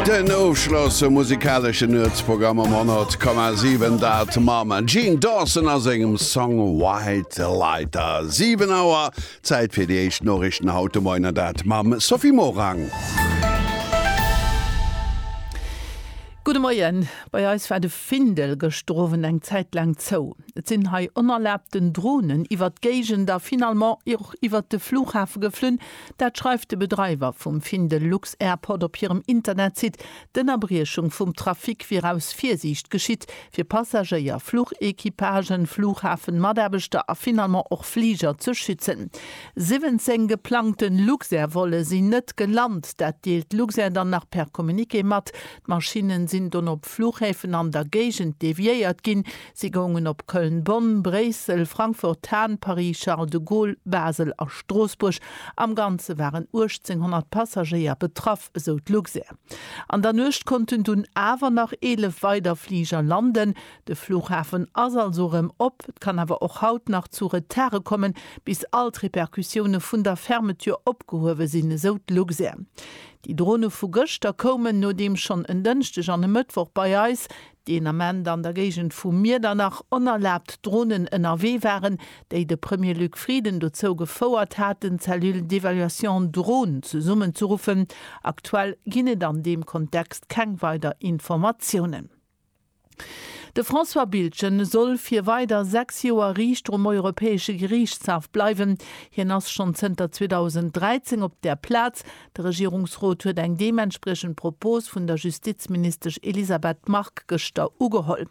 Den Ofschloss vum musikaleschen Nuetsprogramm um 100,7 dat mam Jean Dawson a sengem Song White Lighter. 7 Auer, Zäit fir déi éischt Noriichten haut de Moien, an dat mam Sophie Morang. Gudde Moien. Bei eis war de Findel gëschter Owend eng Zäit laang zou. Et sinn hei onerlaabten Dronen iwwert d'Géigend a finalement och iwwert de Flughafe geflunn. Dat schreift de Bedreiwer vum Findel Lux Airport op hirem Internetsite. D'Ënnerbriechung vum Trafic wier aus Virsiicht geschitt, fir Passagéier, Fluchequipagen, Flughafenmataarbechter a finalement och Fliger ze schützen. 17 geplangte Luxair-Volle sinn net gelant. Dat deelt d'Luxair dann nach per Communiqué mat. D'Maschinne sinn dunn op Flughäfen an der Géigend deviéiert ginn, Si goungen op Köln-Bonn, Bréissel, Frankfurt-Hahn, Paris-Charles de Gaulle, Basel a Stroossbuerg. Am Ganze waren 1.800 Passagéier betraff, esou d'Luxair. An der Nuecht konnten dunn awer nach 11 weider Fliger landen. De Flughafen ass also erëm op. Et kann awer och haut nach zu Retardë kommen, bis all d'Repercussioune vun der Fermeture opgehuewe sinn, esou d'Luxair. Déi Drone vu gëschter koumen, nodeem schonn en Dënschdeg an e Mëttwoch bei eis deen Ament an der Géigend vu Miedernach onerlaabt Dronen ënnerwee waren, déi de Premier Luc Frieden dozou gefouert haten, d'Cellule d'évaluation drones zesummenzerruffen. Aktuell ginn et an deem Kontext keng weider Informatiounen. De François Biltgen soll fir weider sechs Joer Riichter um Europäesche Geriichtshaff bleiwen. Hien ass schonn zënter 2013 op där Plaz, De Regierungsrot huet eng deementspriechend Propos vun der Justizministesch Elisabeth Margue gëschter ugeholl.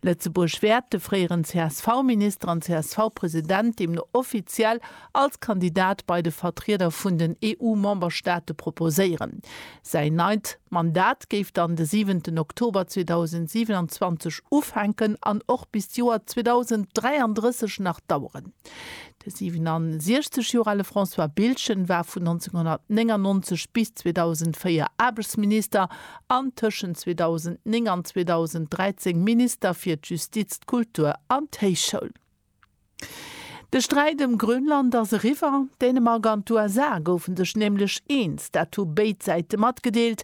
Lëtzebuerg wäert de fréieren CSV-Minister an CSV-President deemno offiziell als Kandidat bei de Vertrieder vun den EU-Memberstaate proposéieren. Säin neit Mandat géif dann de siwenten Oktober 2027 ufänken an och bis d'Joer 2033 nach daueren. De 67 Joer ale François Biltgen war vun 1999 bis 2004 Aarbechtsminister an tëschent 2009 an 2013 Minister fir d'Justiz, d'Kultur an d'Héichschoul. De Sträit ëm Grönland ass eriwwer. Dänemark an d'USA goufe sech nämlech eens, dat hu béid Säite matgedeelt.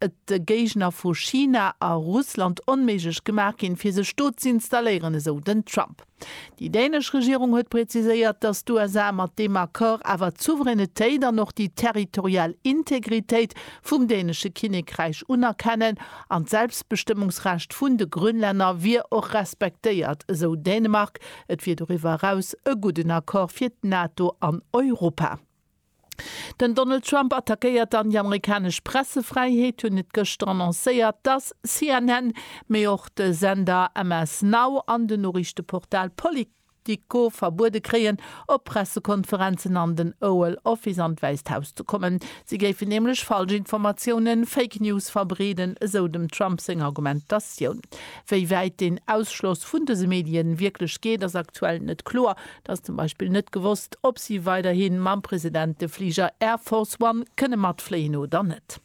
et de Géigner vu China a Russland onméiglech gemaach ginn, fir sech do z'installéieren, esou den Trump. Déi dänesch Regierung huet preziséiert, datt d'USA mat deem Accord awer d'Souveränitéit an och déi territorial Integritéit vum dänesche Kinnekräich unerkennen an d'Selbstbestëmmungsrecht vun de Grönlänner wier och respektéiert, esou Dänemark. Et wier doriwwer eraus e gudden Accord fir d'NATO an Europa. Den Donald Trump attackéiert dann déi amerikanesch Pressefräiheet, hunn et gëschter annoncéiert, dass CNN, mee och de Sender MS Now an den Noriichteportal Politico verbuede kréien, op Pressekonferenzen an den Oval Office an d'Wäisst Haus ze kommen. Si géifen nämlech falsch Informatiounen, Fake News, verbreeden, esou dem Trump seng Argumentatioun. Wéi wäit den Ausschloss vun dëse Medien wierklech geet, ass aktuell net kloer. Et ass zum Beispill net gewosst, ob si weiderhi mam President de Fliger Air Force One kënne matfléien oder net.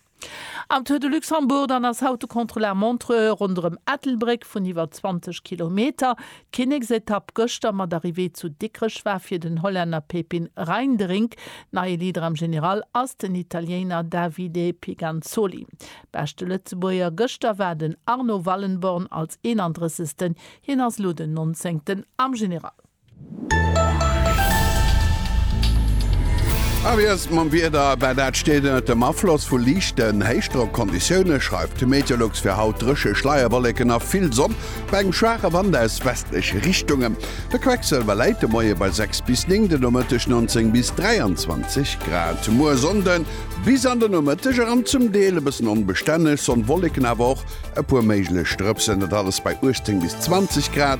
Am Tour de Luxembourg dann ass haut de Contrôle à montre ronderëm Ettelbréck vun iwwer 20 Kilometer. D'Kinneksetapp gëschter mat Arrivée zu Dikrech war fir den Hollänner Pepin Reinderink. Neie Leader am General ass den Italiéiner Davide Piganzoli. Beschte Lëtzebuerger gëschter war den Arno Wallenborn als 31. Hien ass elo den 19. am General. A wéi ass et mam Wieder? Well dat steet ënnert dem Afloss vu liichten Héichdrockconditioune schreift de Meteolux fir haut dréche Schleierwollécken a vill Sonn bei engem schwaache Wand aus westleche Richtungen. De Quecksëlwer läit de Moie bei 6 bis 9, de Nomëtteg 19 bis 23 Grad. Muer Sonnde bis an de Nomëtteg eran zum Deel e bëssen onbestänneg, Sonn, Wollécken awer och e puer méiglech Drëpsen, dat alles bei 18 bis 20 Grad.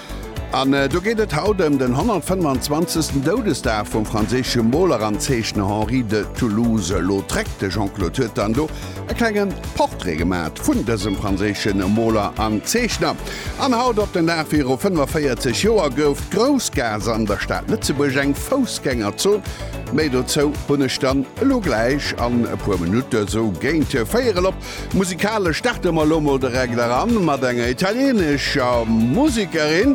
An do geet et haut ëm den 125. Doudesdag vum franséische Moler an Zeechner Henri de Toulouse-Lautrec. De Jean-Claude huet dann do e klenge Portrait gemat vun dësem franséische Moler an Zeechner. An haut op den Dag viru 45 Joer gouf d'Groussgaass an der Stad Lëtzebuerg eng Foussgängerzon. Méi dozou hunn ech dann elo gläich an e puer Minutte sou géint véierel op Musikalesch starte mer elo mol direkt eran mat enger italieenescher Musekerin,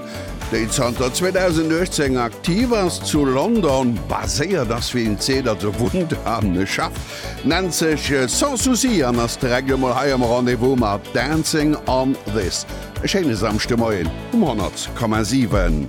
déi zanter 2018 aktiv ass, zu London baséiert ass, wéi een seet, also wunnt a schafft, nennt sech Sans Souci an ass direkt elo mol hei am Rendez-vous mat Dancing on This. E schéine Samschdemoien um 100,7.